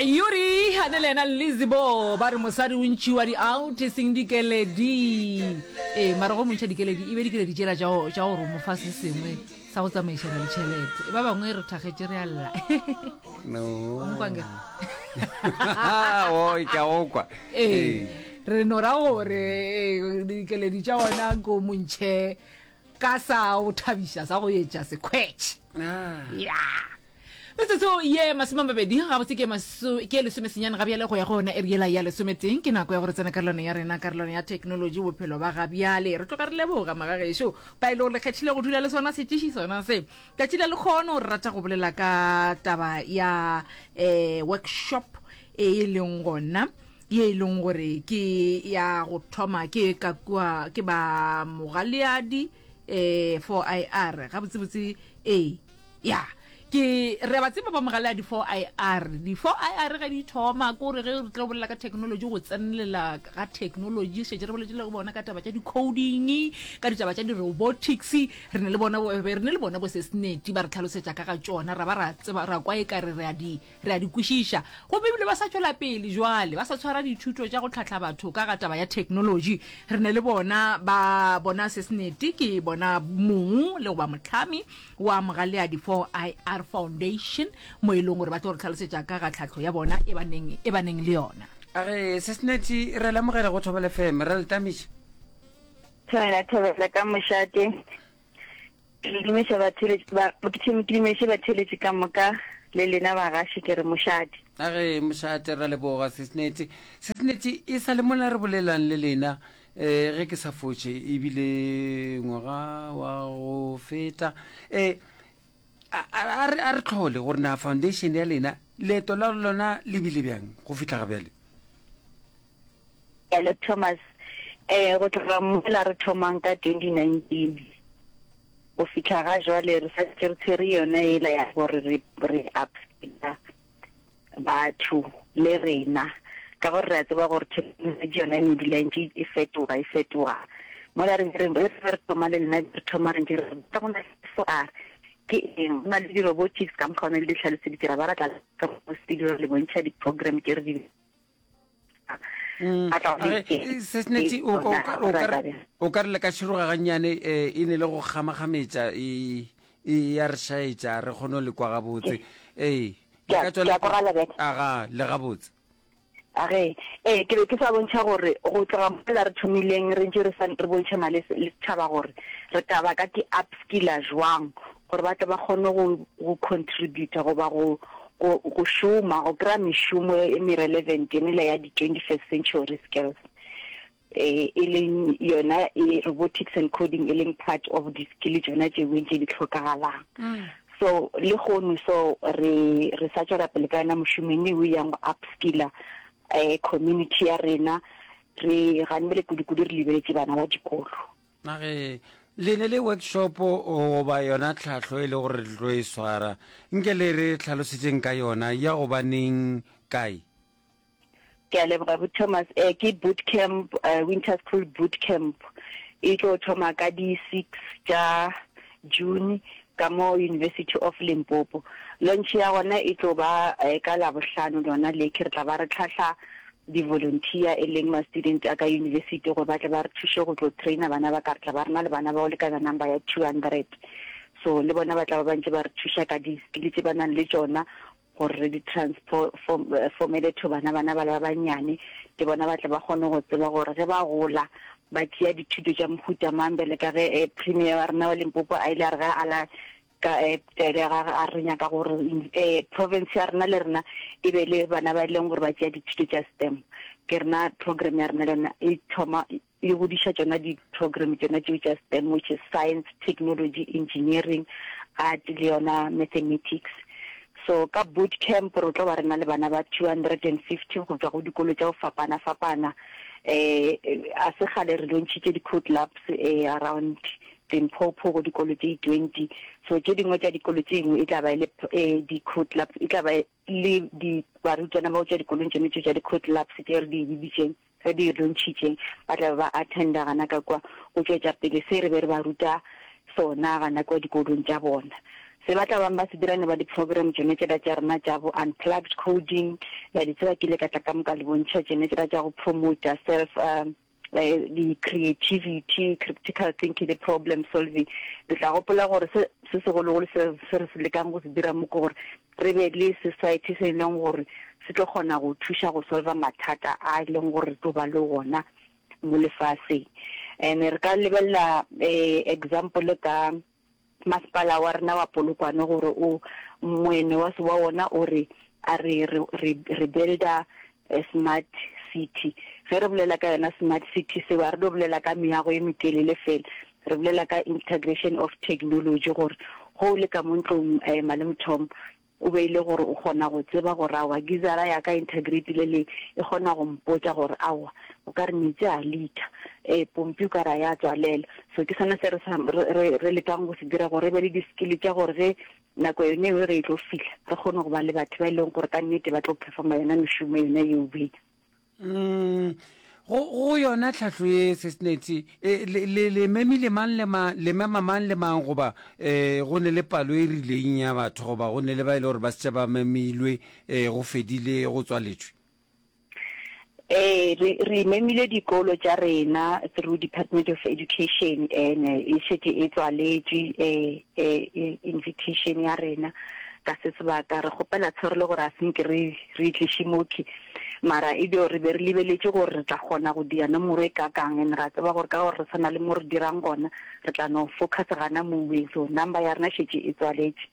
yuri a ne le ena lizebo ba re mosadi o ntšhiwa di-out e seng dikeledi ee mara go montšha dikeledi e be dikeledi tšela tša gore o mofa se sengwe sa go tsamaišana le tšhelete e ba bangwe re thakgetše re alla okwa ee re no ra gore eh, dikeledi tša ona ko montšhe ka sa o thabiša sa go etša sekhwetšhe ah. ya Metsotso ye masome a mabedi gabotse ke maso ke lesome senyane ga bjale go ya go yona eriela ya lesometeng ke nako ya gore tsena karolano ya rena karolano ya technology bophelo ba ga bjale re tloga re leboga magagešo ba e le gore le kgethile go dula le sona setiši sona se tšatši la lekgono re rata go bolela ka taba ya um workshop e e leng gona ye e leng gore ke ya go thoma ke ka kua ke ba mogaleadi eh for i r ga botse botse eh ya ke re ba tseba ba mogala di for i r di for i r ga di thoma ko re ge re tlo bolela ka technology go tsenelela ga technology shetse re boletse le go bona ka taba tša di coding ka ditaba tša di robotics re ne le bona re ne le bona bo se sneti ba re tlhalosetsa ka ga tsona ra ba ra tseba ra kwa e ka re re a di Re a di kwešiša. Gomme ebile ba sa tšwela pele bjale, ba sa tshwara dithuto tša go hlahla batho ka ga taba ya theknolotši. Re na le bona, ba, bona se senete, ke bona mong le go ba mohlami wa Mogaleadi 4IR Foundation, mo e leng gore ba tlo re tlhalosetša ka ga tlhahlo ya bona e ba neng, e ba neng le yona. A re, se senete, re a le amogela go Thobela FM. Re a le tamiša. Thobela, thobela ka mošate. Ke le dumeša batheeletši ba, ke tšhe, ke dumeše batheeletši ka moka, le lena bagaši, ke re mošate. A ge mošate, ra leboga, Sis Netty. Sis Netty, e sa le mola re bolelang le lena, eh, ge ke sa fotše, e bile ngwaga wa go feta, eh, a, a, a re, a re tlhole gore na foundation ya lena, leeto la lona le bile bjang go fihla ga bjale? Hello Thomas, eh go tloga mola re thomang ka 2019 go fihla ga jwale re sa ntse re tshwere yona ela ya gore re re upseta batho le rena ka gore re a tseba gore thekenoloji yona e ne dula e ntse e fetoga e fetoga mola re re re re thoma le nna re thoma re ntse re ka go na fo a ke eng go na le di-robotics ka mokgwa o ne le di tlhaloseditse ra ba ra tla ka studio re le bontšha di-program tse re di Mm. sesneti o ka re le ka široga gannyane um eh, e ne le go kgamakgametša e, e ya re šaetša re kgone le kwa gabotse ee aga le gabotse age ee ke be ke sa bontšha gore go tloga mola re thomileng re ntse re bontšhana le setšhaba gore re taba ka ke upskiller jwang gore ba tle ba kgone go, go contributor goba go, go, go šoma go kry-a mešomo e merelevant enele ya di-twenty first century skills eh, e leng yona e robotics and coding e leng part of di-skill tsona tše beng tše di tlhokagalang mm. so le gone so re re sa tšwela pele ka yona mošomo mme o yang go upskiller um community ya rena re ganebele kudu-kudu re lebeletse bana ba dikolo na ge le ne le workshopo goba yona tlhahlo e le gore le tlo e swara nke le re tlhalosetseng ka yona ya gobaneng kae ke a leboga bo thomas um ke boot camp uh, winter school boot camp e tlo thoma ka di-six tša June, ka mo University of Limpopo. Launch ya gona e tlo ba ka Labohlano lona le, ke re tla ba re tlhahla di-volunteer e leng ma-student a ka university gore ba tle ba re thuše go tlo trainer bana ba ka. Re tla ba re na le bana ba go lekana number ya two hundred, so le bona ba tla ba ba ntše ba re thuša ka di-skill tše ba nang le tšona. gore re di transformele to bana bana bale ba bannyane, le bona ba tle ba kgone go tseba gore ge ba gola ba tšea dithuto tša mohuta mang, bjale ka ge Premier wa rena wa Limpopo a ile a re ge a ala ka taelo ya gage a re nyaka gore province ya rena le rena e be le bana ba e leng gore ba tšea dithuto tša STEM. Ke rena program ya rena le yona e thoma e godiša tšona di-program tšona tšeo tša STEM which is science, technology, engineering, art le yona mathematics. So ka boot camp re tlo ba re na le bana ba 250 go tswa go dikolo tša go fapana-fapana. Um a se gale re lontšhitše di-code labs um around Limpopo go dikolo tše 20 so tše dingwe tša dikolo tše dingwe e tla ba e le um di-code labs e tla ba le barutwana bao tša dikolong tšone tšeo tša di-code labs tše re di bibitšeng Ge di rontšhitše, ba tla be ba attenda gana ka kwa go tšwetša pele se re be re ba ruta sona gana kwa dikolong tša bona. Se ba tla bang ba se dira ne ba di-program tšone tšela tša rena tša bo Unplugged Coding, le a di tseba, ke ile ka tla ka mo ka le bontšha tšone tšela tša go promoter self um di-creativity, criptical thinking le problem solving. Le tla gopola gore se, se segologolo se, se re se lekang go se dira mo ke gore Re be le society se e leng gore se tlo kgona go thuša go solver mathata a e leng gore re tlo ba le wona mo lefaseng. And re ka lebelela example ka masepala wa rena wa Polokwane gore o moene wa wa wona o re a re re re builder Smart city, ge re bolela ka yona smart city seo a re no bolela ka meago e metelele fela, re bolela ka integration of technology gore ge o le ka mo ntlong um malemothomo o be e le gore o kgona go tseba gore aowa gizara ya ka integrate le le e kgona go mpotsa gore aowa o ka re metsi a litha um pompi o ka re a ya tswalela so ke sone se re, re, re lekang go se dira gore e be le di-skill tša gore ge Nako yona eo ge e tlo fihla, re kgone go ba le batho ba e leng gore ka nnete ba tlo performa yona mešomo yona eo bena. Mm, go, go yona tlhahlo ye sesneti e, le, le, le memile mang le ma, le mema mang le mang goba e, go ne le palo e rileng ya batho goba go ne le ba e le gore ba setša ba memilwe e, go fedile go tswaletšwe? Ee, re re imemile dikolo tša rena through Department of Education and e šetše e tswaletše eh, eh, eh, invitation ya rena ka se sebaka re kgopela tshwaro le gore a senke re re tliše mokhi mara e dio re be re lebeletše gore re tla kgona go dira nomoro e kakang and ra tseba gore ka gore re tshwana le mo re dirang gona re tla no focus gana moweng so number ya rena šetše e tswaletše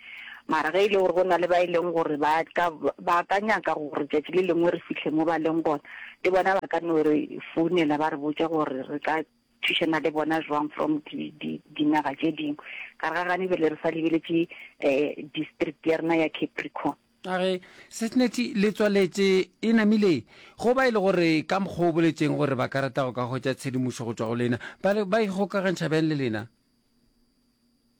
Mara ge e le gore go na le ba e leng gore ba ka, ba ka nyaka gore tšatši le lengwe re fihle mo ba leng gona, le bona ba ka no re founela ba re botša gore re ka thušana le bona jwang from di, di, dinaga tše dingwe. Ka re ga gane be le re sa lebeletše um district ya rena ya Capricorn. A re, Sesneti le tswaletše e namile go ba e le gore ka mokgwa o boletšeng gore ba ka rata go ka hwetša tshedimošo go tšwa go lena, ba re ba ikgokagantšha bjang le lena?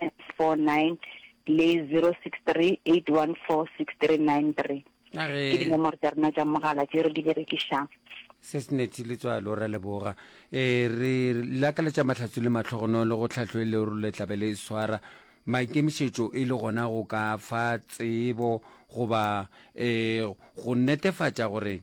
079 le 0638146393 ke dinomoro tša rena tša mogala tše re di berekišang sesneti le tswalo ra leboga e re lakaletša mahlatso le matlhogono le go tlhahlo e le role tlabe le swara maikemišetšo e le gona go ka fa tsebo goba um go netefatša gore